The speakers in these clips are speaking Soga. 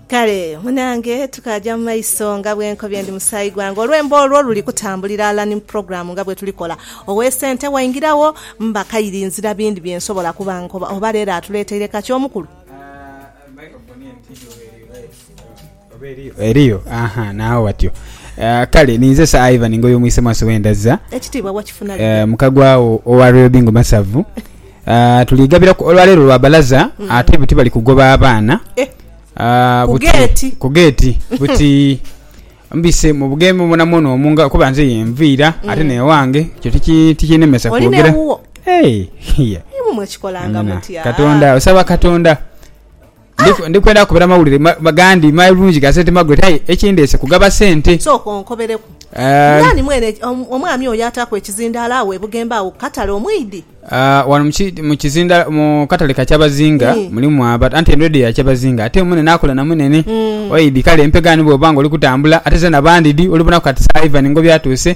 kale munange tukaja mu maiso nga bwenkobye ndi musaayi gwange olwembo olwo luli kutambulira ala ni program nga bwetulikola owesente waingirawo mba kairi nzira bindi byensobola kuba nkoba oba lero atuleteire kaki omukulu Eriyo? Aha, naagho watyo. Kale, ninze Sir Ivan Ngoyo Mwisemwaso we Ndazza, Ekitiibwa wakifuna dha? mukaguagho owa Royal Bingo Masavu. Tuli gabiraku olwa leero lwa balaza, ate buti bali kugoba abaana Ku geeti? ku geeti buti mbise mu bugembe mwona mwona omwo nga kuba nze ye nviira ate n'ewange, ekyo tiki tikinemesa Oli kwogera. n'ewuwo? Hey, hia. Imwe mwekikolanga Angana. mutya? Katonda, osaba Katonda. Ndi, ndi kwenda kubera mawulire ma, ma, gandi malungi ga sente magule, aye ekindeese kugaba sente. Sooka onkobereku. Uh. Naani mwene eki, om, omwami oyo ataaku ekizindaalo agho e Bugembe agho ku katale omwidhi? Uh, wano mu ki, mu kizindaalo, mu katale ka kyabazinga, Ii. mulimu aba, anti eno edho ya kyabazinga. Ate mwene naakola na mwinene. Mm. Oidhi, kale mpe ghano bw'oba nga oli kutambula, ate zena bandi dhi, olibonaku kati saha Ivan Ngobi atuuse.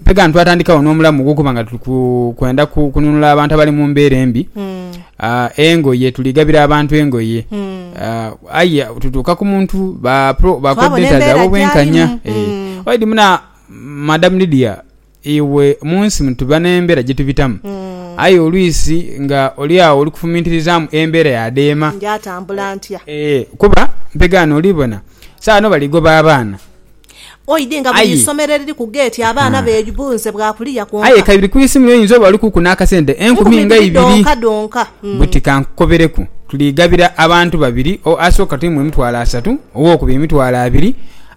Mpe ghano twatandikawo n'omulamu ogw'okuba nga tuli kwenda kununula abantu abali mu mbeera embi hmm. ah, engoye tuli gabira abantu engoye hmm. ah, aye tutuuka ku muntu bakodeta zaaba obwenkanya eh. hmm. waidi muna madam lidia iwe mu nsi mutuba n'embeera gye tubitamu aye olwisi nga oli awo oli kufumintirizamu embeera yadeema eh, kuba mpegaano olibona saano baligoba abaana Oidhe nga buli isomero eriri ku geeti abaana beebunze bwa kuliya kwonka. Aye ka biri ku isimu yo oyinza oba olikuku n'akasente enkumi nga ibiri buti. Ka nkukobereku, tuligabira abantu babiri, asooka tuimuwe emitwalo asatu, owookubiri emitwalo abiri,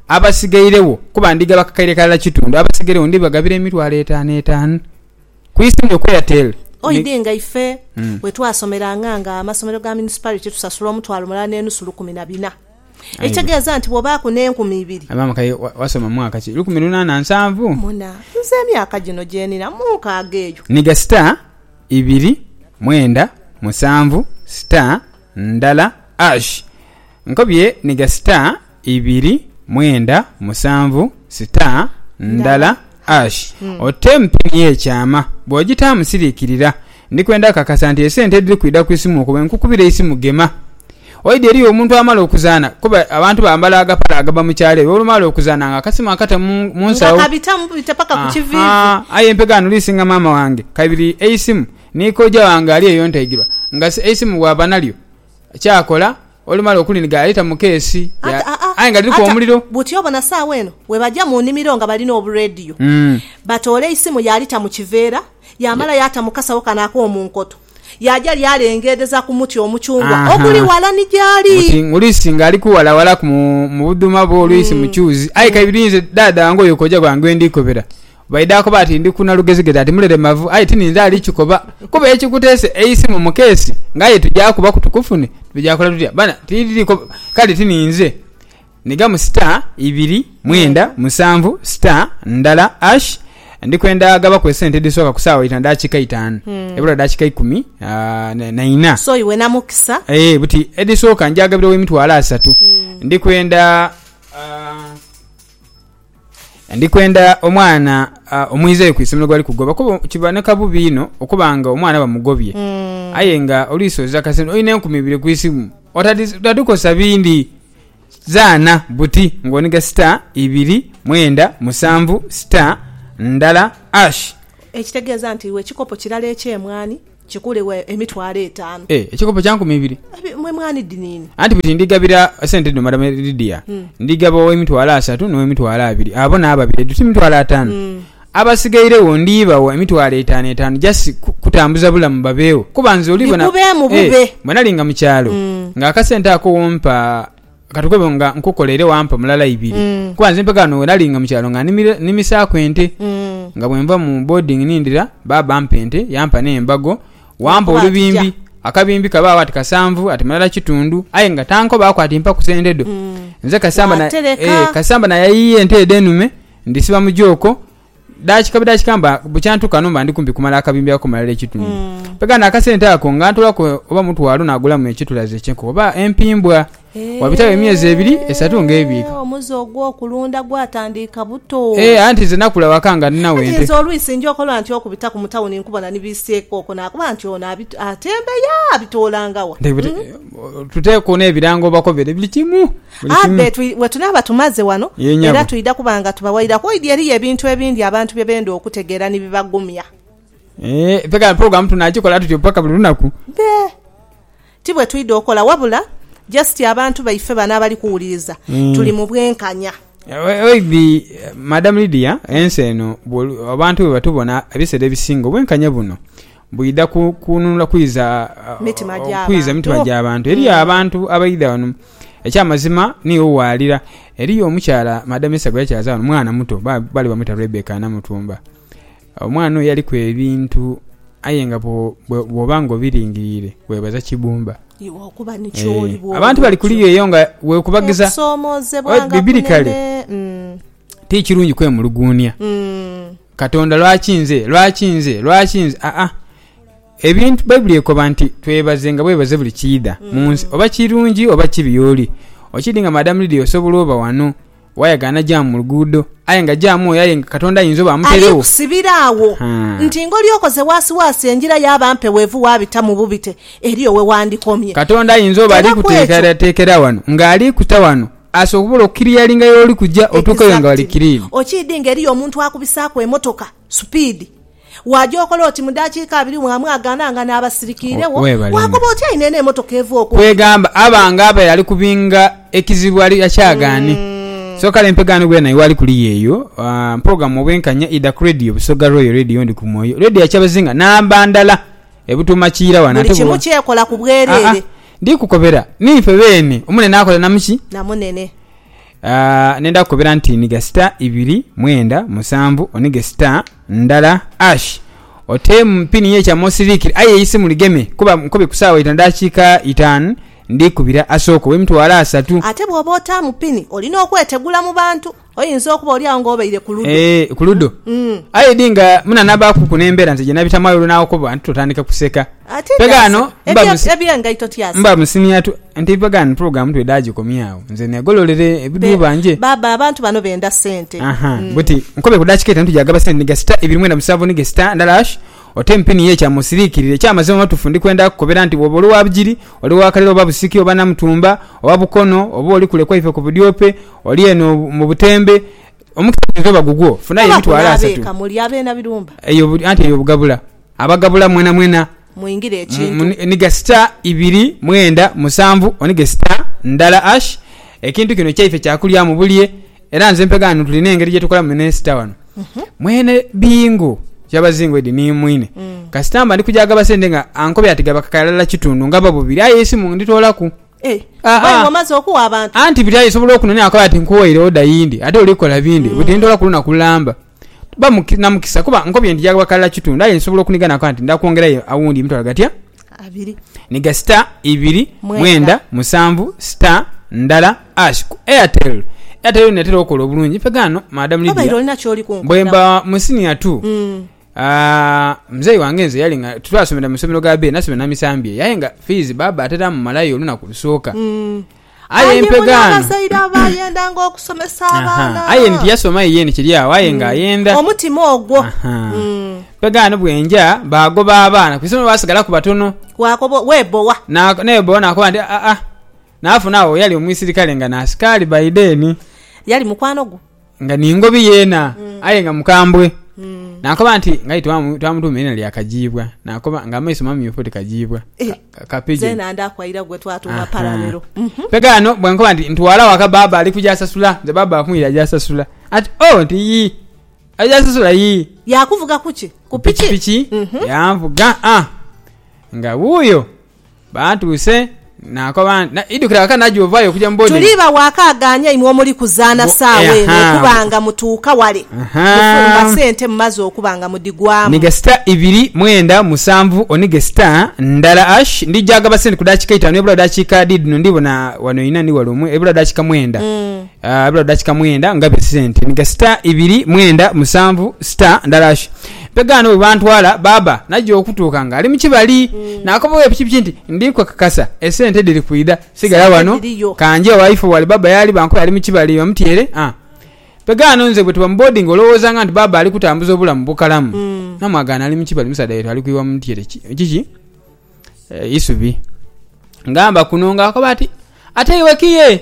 abasigairegho, kuba ndigaba kakaire kalala kitundu, abasigairegho ndibagabira emitwalo etaanu etaanu ku isimu yo ku Airtel. Oidhe nga ife bwe twasomeranga nga amasomero ga municipality tusasula omutwalo mulala n'enusu lukumi na bina. Ekitegeeza nti bw'obaaku n'enkumi ibiri. Maama Kaye, wasoma mwaka ki? Lukumi luna na nsanvu. Muna, Nze emyaka gino gye nina mu nkaaga eyo. Nhiga star ibiri mwenda musanvu star ndala ash. Nkobye nhiga star ibiri mwenda musanvu star ndala Ash, ote empini ye kyama bwogitaamu sirikirira. Ndikwenda kakasa nti esente ediri kwidha ku isimu okwo bwenkukubira eisimu gema. Oidhi eriyo omuntu amala okuzaana kuba abantu bambala agapale agaba mu kyalo eyo olumala okuzaana nga akasimu akata mu mu Nga nsawo. kabitamu bubita paka ku Aha, kiviivi. aye empegha ndhuli singa maama wange. Kaibiri eisimu ni kojja wange ali eyo ntaigirwa nga si eisimu bwaba nalyo. Kyaakola olumala okulinhiga yaleta mu keesi aye nga dhiliku omuliro. Buti obo na saagha eno bwebaja mu nimiro nga balina obu radio batoola eisimu yaalita mu kiveera yaamala yaata mu kasawo kano ak'omu nkoto yaaja lyalengedheza ku muti omuchungwa oguli wala ni jaali. Buti ng'oluisi nga aliku wala walaku mu budhuma bwo oluisi mu kyuzi aye kaibiri inze dhaadha wange oyo kooja gwange gwe ndiikobera. Baidha akoba ati, Ndi ku Nalugezigezi ati mulelemavu, aye tininze ali kikoba. Kuba ekikuteese eisimu mu keesi nga ye tuja kubaku tukufune, tuja kola tutya? Bana, tiliri koba. Kale tininze. Nhigamu star ibiri mwenda musanvu star ndala ash. Ndi kwenda gabaku esente edhisooka ku saawa ita dakiika itaanu. Ebula dakiika ikumi na ina. So iwe na mukisa. Eeh buti edhisooka nja gabira owemitwalo asatu. Ndi kwenda. Ndi kwenda omwana omwizeyo ku isimiro gwali kugoba kuba kiboneka bubi inho okuba nga omwana bamugobye aye nga oluisi oza kasente olina enkumi ibiri ku isimu otadhikozesa bindi. Zaana buti ng'oniga star ibiri mwenda musanvu star ndala hash. Ekitegeeza nti iwe ekikopo kirala eky'emwaani. Kikuulibwa emitwalo etaanu. E, ekikopo kya nkumi ibiri. Abe, mwe mwana idiniini. Anti buti ndigabira sente dhino Madam Lydia, ndigaba ow'emitwalo asatu n'ow'emitwalo abiri, abo nabo babiri, edho ti mitwalo ataanu? Abasigairegho ndibawa emitwalo etaanu etaanu just ku, kutambuza bulamu babeegho, kuba nze olibona, Bikubeemu e, bube. bwe nali nga mu kyalo, nga akasente ako w'ompa. Ka tukobe nga nkukoleire wampa mulala ibiri. Kuba nze mpeka ghano we nali nga mu kyalo nga nnimisaaku ente. Nga bwe nva mu boarding nindira, baaba ampa ente, yampa n'embago. Wampa olubimbi, akabimbi kabaagho ati kasanvu, ati mulala kitundu. Aye nga tankobaaku ati mpaku sente dho. Nze Kasamba nayayiiya ente edho enume, ndhisiba mu jooko, Daakika budaakika mba bukya ntuuka ghano mba ndi kumpi kumala akabimbi ako malala ekitundu. Mm. Mpega n'akasente ako nga ntolaku oba mutwalo naagulamu ekitulaze ky'enkoko oba empimbwa. Wabitagho emyezi ebiri, esatu ng'ebiika. Eeh, Omuze ogw'okulunda gwatandiika buto. Eeh, anti nze nakula waka nga ninagho Anti ente. nze olwisi nja okolwa nti okubitaku mu tawuni nkubona ni biiseeko okwo naakoba nti ono abitu- atembeya abitoolanga wa? Nte- bute- Tuteeku n'ebirango bakobere buli kimu. Abe bwe tunaaba tumaze ghano, era twidha kuba nga tubawairaku oidhi eriyo ebintu ebindi abantu bye benda okutegeera ni bibagumya. Eeh, pulogulaamu tunaagikola tutyo paka buli lunaku? Be, ti bwe twidha okola, wabula jasiti abantu baife bano abali kuwuliriza tuli mu bwenkanya. Oidhi Madamu Lydia, ensi eno, abantu bwe batubona ebisera ebisinga, obwenkanya buno Bwidha ku kununula kwiza mitima gya bantu, eriyo abantu abaidha ghano. Ekya mazima niiwo waalira. Eriyo omukyala Madam Esther gwe yakyaaza ghano, mwana muto, baali bamweta Rebecca Namutumba. Omwana oyo yaliku ebintu aye nga bwooba nga obilingiriire weebaza kibumba. Abantu bali kuliyo eyo nga weekubagiza. Bibiri kale ti kirungi kwemuluguunia. Katonda, lwaki nze? Lwaki nze? Lwaki nze? Aa, ebintu, Baibuli ekoba nti, Twebazenga bwebaze buli kiidha mu nsi, oba kirungi oba kibi. Y'oli. Okidhi nga Madam Lydia osobola oba ghano, wayagaana jaamu mu luguudo, aye nga jaamu oyo aye nga Katonda ayinza oba amuteeregho. Ali kusibira agho Haa. nti ngoli okoze waasiwaasi engira yaaba mpewuevu waabita mu bubite eriyo we wandikomye. Katonda ayinza oba ali Era kwekyo. kuteekerateekera ghano, nga ali kuta ghano. Asobola okukiliyalinga y'oli kuja otuukeyo nga ghali kiliini. Okiidhi nga eriyo omuntu akubisaaku emotoka supiidi, waaja okola oti mu daakiika abiri mwamwagaana nga naaba asirikiiregho? Waakoba oti aye neeno emotoka eva okumpi? Kwegamba aba nga abaire ali kubinga ekizibu ali akyagaane. So kale empegaano bwena iwe ali kuliya eyo, Mpogamu Obwenkanya idha ku Radio Busoga Royal Radio ndi ku mwoyo. Radio ya kyabazinga namba ndala ebutuuma kiira wano ate buli kimu kyekola ku bwereere. Ndi kukobera ninfe beene omunene akola na muki? Na munene. Nenda kukobera nti oniga sita ibiri mwenda musanvu onige sita ndala ash ote mu pini ye kyama osirikire aye eisimu ligeme kuba nkobye ku saawa ita na dakiika itaan ndi kubira asooka owe mitwalo asatu. Ate bwoba otaamu pini olina okwetegula mu bantu. Oyinza okuba oli agho ng'obaire ku ludo. Ee, ku ludo. Aye di nga munanabaaku ku n'embeera nze gye nabitamu aye olunaawo kuba nti tutandike kuseka. Ati Pega ghano tyasa. mba Ebye- musi- Eby'engaito tyasa. mba musimya tu nti pega ghano pulogulaamu twidha agikomye agho nze neegololere Be- ebidhuuba nje. Baaba abantu bano benda sente. Aha, buti nkobe ku daakika etaanu tuja gaba sente ni gasita ibiri mwenda musanvu ni gesita ndala hash ote mpini ye ekyama osiriikirire. Eky'amazima mu batuufu ndi kwenda kukukobera nti bw'oba oli wa Bugiri, oli wa Kalira oba Busiki oba Namutumba oba Bukono oba oli kule kwaife ku budyope Oli eno mu butembe. Omukisa guinza oba gugwo. Funayo emitwalo asatu. Oba kunaaba eka muli abeena birumba. Eyo anti eyo bugabula. Abagabula mwenamwena. Mwingire ekintu. Oniga star ibiri mwenda musanvu onige star ndala ash. Ekintu kino kyaife kya kulyamu bulye era nze mpegha ghano tulina engeri gye tukolamu ne star ghano. Mwene Bingo Kyabazinga edi ni mwine. Kasita mba ndi kugya ghagaba sente nga ankobera ati gaba kakaya lala kitundu ngaba bubiri aye eisimu nditoolaku. Aa, anti buli alisobola okunonera akobe ati nkuwoire oda yindi ate oli kukola bindi budi ndola ku lunaku lulamba ba na mukisa kuba nkobye nti jabakalira kitundu aye nsobola okuniga nakoba nti nda kwongerayo awundi emitwalo gatya niga star ibiri mwenda musanvu star ndala ash ku airtel airtel yona etera okola obulungi nfe gano madam Lydia bwemba mu senior two Aah mzei wange nze yali nga twasomera mu somero ga bee nasomera na misambye yaye nga fees baba atera amumalayo olunaku lusooka aye empega ano abazaire abayendanga okusomesa abaana aye eno tiyasoma yiye eno kiri awo aye nga ayenda omutima ogwo empega ano bwenja bagoba abaana ku isomero basigalaku batono wakoba webowa nebowa nakoba nti aa nafuna awo yali omwisirikale nga nasikali by then. Yali mukwano gwo? nga ningobi yena mm. aye nga mukambwe mm. nakoba nti ngai twamutuma ina lya kajiibwa nakoba nga amaiso mamyufu ti kajiibwa eh. kapijnandakwaira gwe twatuma paralero mhm. pegano bwenkoba nti ntwala waka baba ali kujasasula nze baba akumwira ajasasula ati o oh, nti yii ajasasula yii yakuvuga kuki kupiki piki mhm. yanvuga a ah. nga wuuyo Bantuuse, naakoba nti, Idhukira ghaka naja ovaayo okuja mu boarding. Tuli bawaaka agaanya imwe omuli kuzaana saawa eno okuba nga mutuuka wale mufumba sente mumaze okuba nga mudhigwaamu. Nige star ibiri mwenda musanvu onige star ndala hash ndija ghagaba sente ku dakiika eitaanu ebula dakiika diidhino ndhibona wano inha ni wale omwo ebula dakiika mwenda. Biro dakika mwenda nga biri sente ni gasita ibiri mwenda musanvu sita ndalash mpega ano bwebantwala baaba naja okutuuka nga ali mukibali nakoba owe pikipiki nti ndi kwekakasa esente diri kwida sigala Sente wano dhiriyo. kanje waife wali baaba yali bankoya ali mukibali bamutyere ah mpega ano nze bwetuba mu boarding olowoza nga nti baaba ali kutambuza obulamu bukalamu namwagana ali mukibali musaadha wetu ali kwiwa mutyere ki kiki isubi ngamba kuno nga akoba ati ate iwe kiye.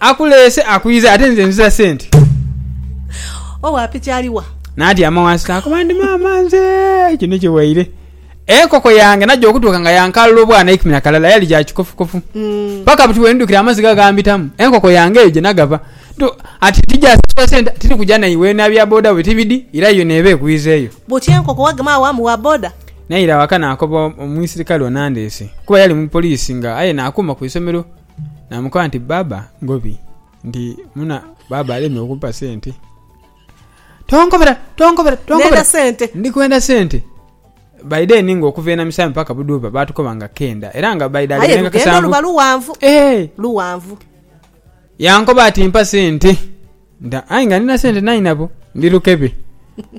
Akuleese akwiza ate nze nziza sente. Owa piki ali wa? Natyama wansi nakoba ndi maama nze kino kiwaire. Enkoko yange naja okutuuka nga yankalula obwana eikumi na kalala yali gya kikofukofu. Paka buti bwendidukira amaizi gagambitamu enkoko yange eyo gyenagava. Ntu ati tijasasula sente tiri kuja naiwe na bya boda bwe tibidi ira yo neeba ekwiza eyo. Buti enkoko wagema agho amu wa boda? Naira waka nakoba omwisirikale onandeese kuba yali mupoliisi nga aye nakuuma ku isomero. Naamukoba nti, Bbaabba, ngobi nti muna bbaabba alemye okumpa sente. Tonkobera! Tonkobera! Tonkobera! Ndhenda sente. Ndi kwenda sente. By then nga okuva e Namisaami paka Buduuba baatukoba nga kenda era nga by that Aye nengako lugendo luba sanvu. lughanvu. Eeh! Lughanvu. Yankoba ati mpa sente. Nga aye nga nina sente nai nabo ndi lukebe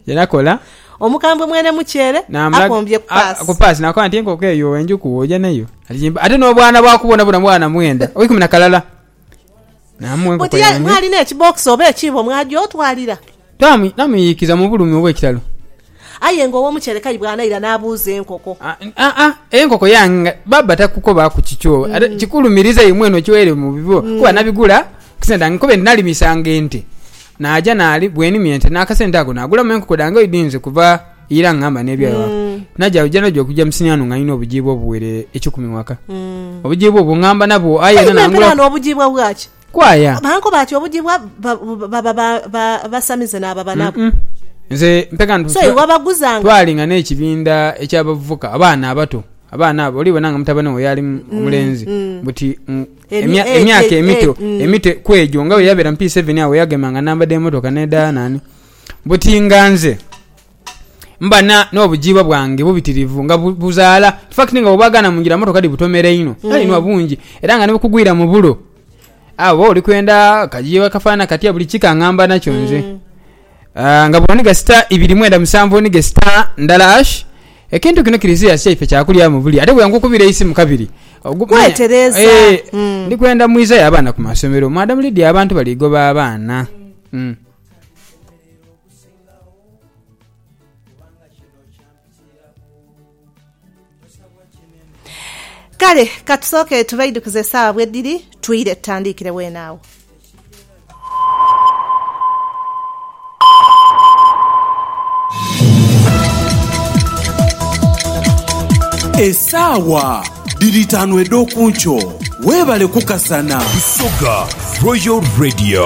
era kola. Omukambwe mwene mukyere akombye ku paasi. Ku paasi nakoba nti enkoko eyo enjuku oja nayo ate nobwana bwaku bwonabwona bwana mwenda oikumi na kalala namuwa enkoko yange. Buti mwalina ekibokisi oba ekiibo mwaja otwalira? Namuyiikiza mu bulumi obwekitalo Aye nga ow'omukyerekayi bw'anaira n'abuuza enkoko. Aa, enkoko yange nga baaba takukobaaku kikyo. Ate kikulumiriza imwe enho kiwaire mu bibyo kuba nabigula ku sente dhange kuba endi nalimisanga ente. Naaja naali bwenimya ente n'akasente ako naagulamu enkoko dhange oidhinze kuva ira nga ngamba n'ebyayo ewaka. Naja buja naja okugya mu siniya ghano nga ndina obujiibwa obuwere eikumi ghaka. Obujiibwa obwo ngamba nabwo aye era naangulaku. Aye me mperaano obujiibwa bwaki? Kwaya. Bankoba ati obujibwa baba basamize n'ababa nabo. Nze mpeka nti So iwe abaguzanga. twalinga n'ekibinda eky'abavubuka, abaana abato, abaana abo olibona nga mutabane wo yaali mu- omulenzi, buti mm, Emi- emya- eh, emyaka eh, emito, eh, mm. emito kw'egyo nga bwe yabeera mu P7 agho yagemanga namba dh'emotoka n'edha naani, buti nga nze. mba na n'obujiibwa bwange bubitirivu nga buzaala. In fact nga bwobwagaana mu ngira mmotoka dhibutomera inho. Kale inhwa bungi era nga ni bukugwira mu bulo. Aye oba oli kwenda kajiibwa kafaanana katya buli kika ngamba nakyo nze. Aah nga buno ni gasita ibiri mwenda musanvu ni gesita ndala ash. Ekintu kino kiri serious kyaife kya kulyamu buli ate bwe nkukubira eisimu kabiri ogu, manya, Kwetereza. eeh, Mm. ndi kwenda mwizayo abaana ku masomero. Madam Lydia abantu bali goba abaana. Mm. Ghulagho, kubanga kino kyampitiiraku. Kale ka tusooke tubaidhukize esaawa bwedhiri, twire tutandiikire weene agho. Esaawa dhiri itaanu edh'oku nkyo. Weebale kukasana. Busoga Royal Radio.